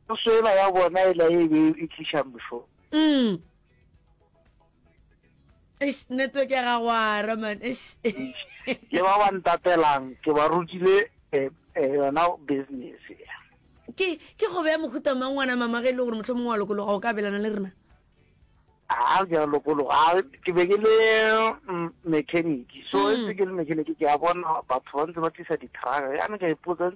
Puso ena ya bona e la e be e tliša mfo. Mm. Eish network ya ga wa ra man eish. Ke ba ba ntatelang ke ba rutile eh, eh, yona business. Ke ke go beya mohuta mang ngwana mama ge e le gore motlho mongwe wa lokologa o ka belana le rena. Ha ke lokologa ke be ke le mm, mechanic. So mm. e ke le mechanic ke a bona batho ba ntse ba tlisa di-truck. Ya ne ka ipotsa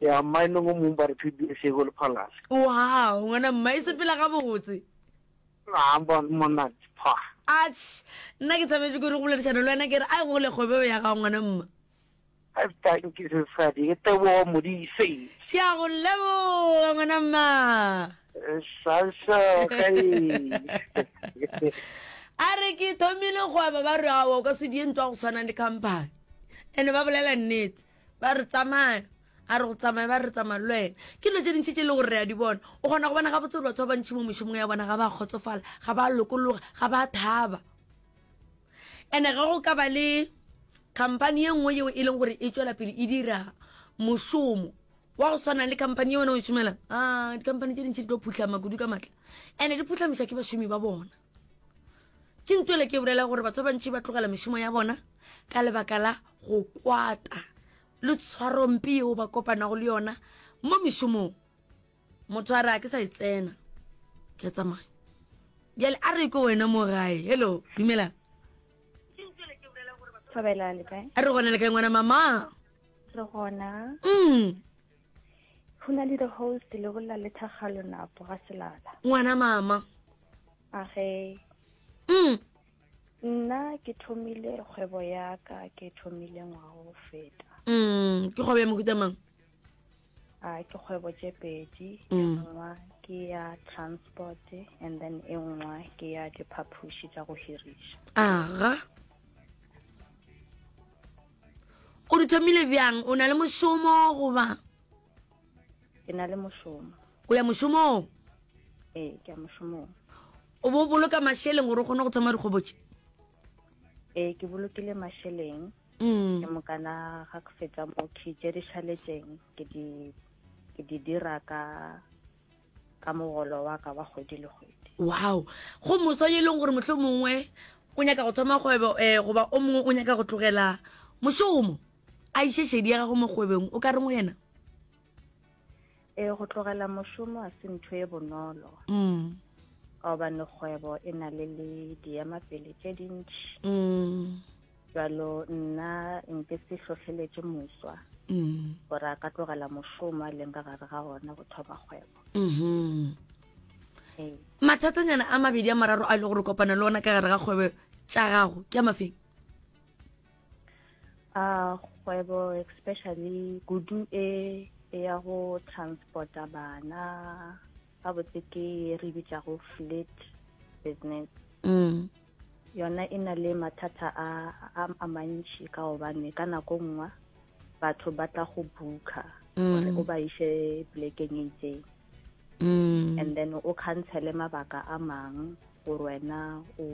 Ya mmae nong o mong ba re phedi e sego le phalase. Wow, ngwana mma e sepela ga botse. A bon monna pha. Atsh, nna ke thabetše ke re go boledišana le wena ke re ai go le kgobeo ya gago ngwana mma. I've done ke sesadi ke tebogo modise. Ke a go leboga ngwana mma. Sasha ka e. A re ke thomile kgwebo ba re awa o ka se die ntwa go tshwana le company. Ene ba bolela nnete. ba re tsamaya a re go tsamaya ba re tsamaya le wena ke dilo tse dintšhi tse e le gore re a di bona o kgona go bona ga botse gore batho ba bantšhi mo mošomong ya bona ga ba kgotsofala ga ba lokologa ga ba thaba ande ge go ka ba le company ye nngwe yeo e leng gore e tswela pele e dira mošomo wa go tshwana le company ye wena o e šomelang a ah, dikompany tse dintšhi di tlo phutlhama kudu ka maatla ande di phutlhamiša ke bašomi ba bona ke ntwele ke bolela gore batho ba bantši ba tlogela mešomo ya bona ka lebaka la go kwata le tshwarompe yeo ba kopanago le yona mo mešomong motho a re a ke sa e tsena ke a tsamaya bjale a re ko wena mo gae hello dumelang a re gona le kae ngwana mama re gona mm go na le the host le bolla le thagalo napo ga selala ngwana mama Age. Mm. Nna ke thomile kgwebo ya ka ke thomile ngwaga go feta. Mm, ke kgwebo ya mohuta mang? Ah, ke kgwebo tše pedi. E mm. nngwe ke ya transport and then e nngwe ke ya diphaphuši tša go hiriša. Aga. O di thomile bjang? O na le mošomo goba? ke na le mošomo o ya mošomong ee ke ya mošomong o bo boloka mašeleng gore o kgone go thoma dikgobotse ee ke bolokile mašeleng mm. ke mokana ga ke fetsa mo ke tše di šaletšeng ke di ke di dira ka ka mogolo wa ka wa kgwedi le kgwedi wow go moso e leng gore motlho mongwe o nyaka go thoma kgwebo um goba o mongwe o nyaka go tlogela mošomo A iše šedi ya gago mo kgwebeng, o ka reng go yena? Ee, go tlogela mošomo a se ntho e bonolo. Mm. Ka gobane kgwebo e na le le diemapele tše dintši. Mm. Jalo nna nke se hlohleletše moswa mm. gore a ka tlogela mošomo a leng ka gare ga ona go thoma kgwebo. Mm-hmm. Ee. Mathatanyana a mabedi a mararo a e le gore kopana le ona ka gare ga kgwebo tša gago ke a mafeng? a kgwebo especially kudu e e ya go transporta bana ga botse ke re bitsa go fleet business mm. yona e na le mathata a a mantši ka gobane ka nako nngwe batho ba tla go booka mm. gore o ba ise plekeng e itseng mm. and then o cancele mabaka a mangwe gore wena o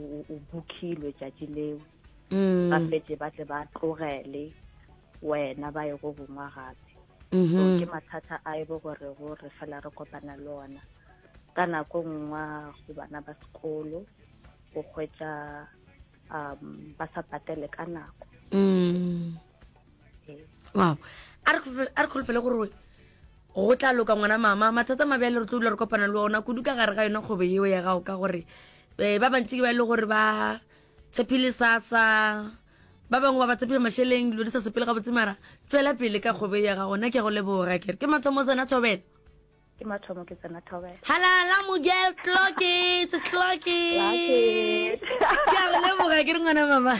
bookilwe tšatši leo mm. ba fetse ba tle ba tlogele wena ba ye go gongwa gape so mm-hmm. ke mathata a e bo gore go re fela re kopana le ona ka nako nngwa go bana ba sekolo go hwetsa um ba sa patele ka nako mm. ee. wow a re kgolofele gore go tla loka ngwana mama mathata mabe a le re tlo dula re kopana le ona kudu ka gare ga yone kgobo eo ya gago ka gore um ba bantsi ke ba e le gore ba Tshepile sasa ba bangwe ba ba tshepiga mašeleng dilo di sa sepele gabotse mara tswela pele ka kgwebo ya gago nna ke go leboga kere ke mathomo tsena thobela ke mathomo ke tsena thobela halala mogel clocket clocket ke a go leboga ke re ngwana mama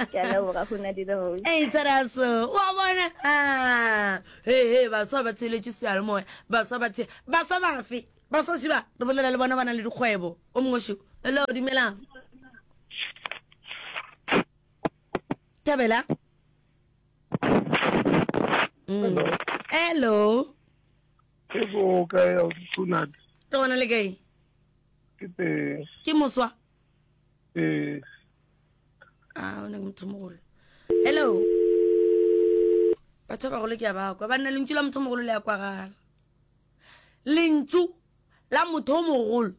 ke a leboga go na dile ho e tsara so wa bona ha ah. he he ba so ba tsheletse sealo moya ba so ba tshe ba so ba fe ba so siba re bolela le bona bana le dikgwebo O mongwe šo. Hello, dumelang. Thabela. Mm. Hello. Hello. Ke go ka ya o tsunat. Ke gona le kae? Ke te. Ke moswa. Eh. Ah, o ne motho mogolo. Hello. Batho ba golo ke a ba kwa. Ba nna lentšu la motho mogolo le ya kwagala. Lentšu la motho o mogolo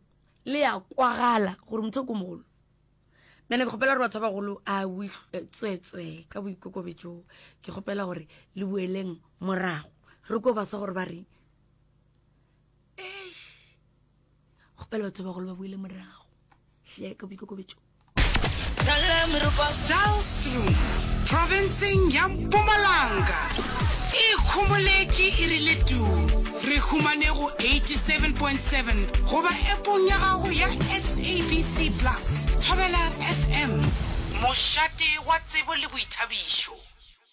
le ya kwagala gore motho o ko mogolo mene ke kgopela gore batho ba bagolo a tswetswe ka boikokobetso ke kgopela gore le boeleng morago re ko baswa gore ba reng kgopela batho ba bagolo ba boele morago hle ka boikokobetso Daalstroom, profenseng ya Mpumalanga, e ikhomoletše e rile tuu. Re humane go 87.7 goba epong ya gago ya SABC Plus. Thobela FM, mošate wa tsebo le boithabišo.